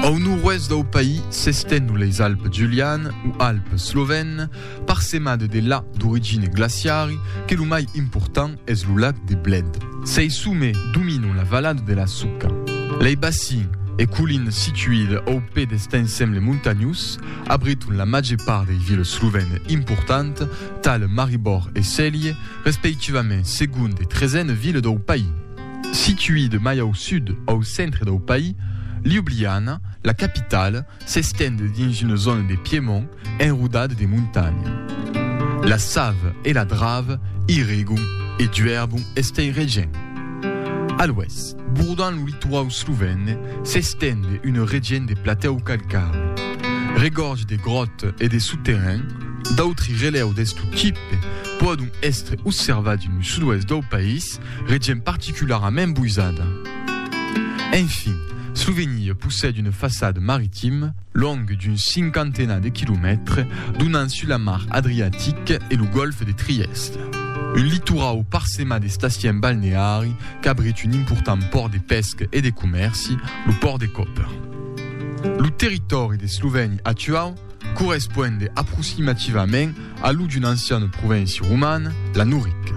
Au nord-oèst dau país s'estenhon leis Alpes Julianes o Alpes Slovènes, parsemades de lacs d'origina glaciari, que lo mai important es lo lac de Bled. Sei sommets dominon la valada de la Suca. Lei bacins e collines situides au pè dest ensemble montanhós abriton la màger part dei viles slovènes importantes, tales Maribor e Celje, respectivament segond e tresena vila dau país. Situida mai au sud, au centre dau país, Ljubljana, la capitala, s'estend dins una zòna de Piemont enrodada de montanha. La sava e la drava i regon e juèrbon estei regent. A l'oèst, bordant lo litoau slovène, s'estend una regent de platèu calcari, regorge de gròta e de soterrain, d'autri relèu d'estu tipe pòdon èstre osservats en lo sud-oèst dau país, Eth regent particularament boisada. Enfin, Slovenir possède une façade maritime longue d'un cinquantenat de quilomètres donant sus la mar Adriatique e lo gòlf de Trièst. Un litorau parsemat d'estacièn balneari qu'abrit un important pòrt de pèsca e de comèrci, lo pòrt de Koper. Lo territòri d'Eslovènia actuau correspond aproximativament A lo d'un ancian provinci roman, la Noric.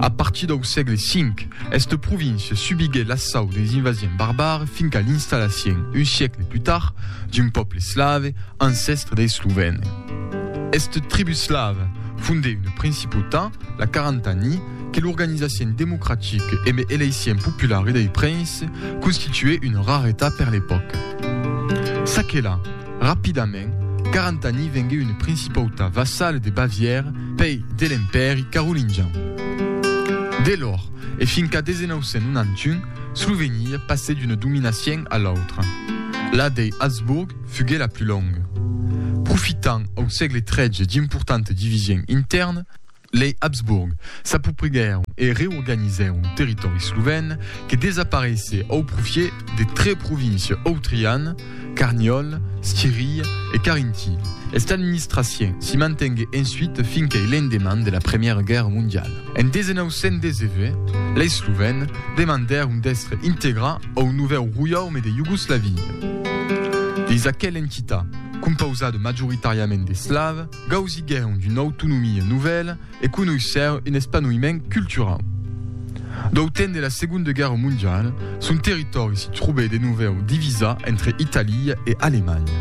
A partir dau sègle V, esta província subiguèt l'assau deis invasiens barbars fin qu'a l'installacien, un siecle plus tard, d'un pòble slave, ancèstre deis Slovène. Esta tribu slava fondèt una principautat, la Carantanie, que l'organizacion democratique e me eleicion populari dei princes constituèt una raretat per l'epòca. Çaquelà, Rapidament, Carantani vengué una principauta vassala de Bavièra, pei de l'Empèri carolingian. De lors, e fin qu'a 1991, Slovenia passèt d'una dominacion a l'autra. La dei Habsburg fugué la plus longa. Profitant au sègle XIII d'importanta division intèrna, Lei Habsburg s'apoprigèron e reorganizèron territòri slovèn que desapareissè au profiet de tre província autrian, Carniòl, Schirii e Carintii. Esta administracion s'i mantengué ensuite fin qu'ei l'endeman de la Premiera Guèrra Mondiala. En 1919, lei slovèn demandèron d'èstre integrats au novèu roiaume de Iugoslavia. Dins aquela entita, compausada majoritàriament d'eslav, Gausiguèron d'una autonomia novèla e conoissèron un espanoïment culturau. Dau temps de la Segonda Guèrra Mondiala, son territòri se trobèt de novèu divisat entre Italia e Alemanha.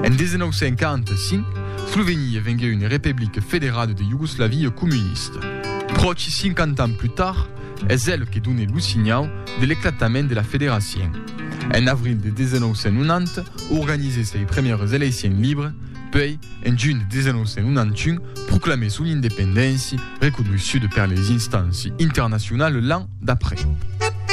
En 1945, Slovenia venguèt una republica federada de Iugoslavia comunista. Pròchi 50 ans plus tard, es el que donèt lo signau de l'eclatament de la federacion. En avril de 1990, organizèt sei primièras eleicions libres, Puèi, en junh 1991, proclamè son independéncia, reconeissuda per les instànci internacionalu l'an d'après.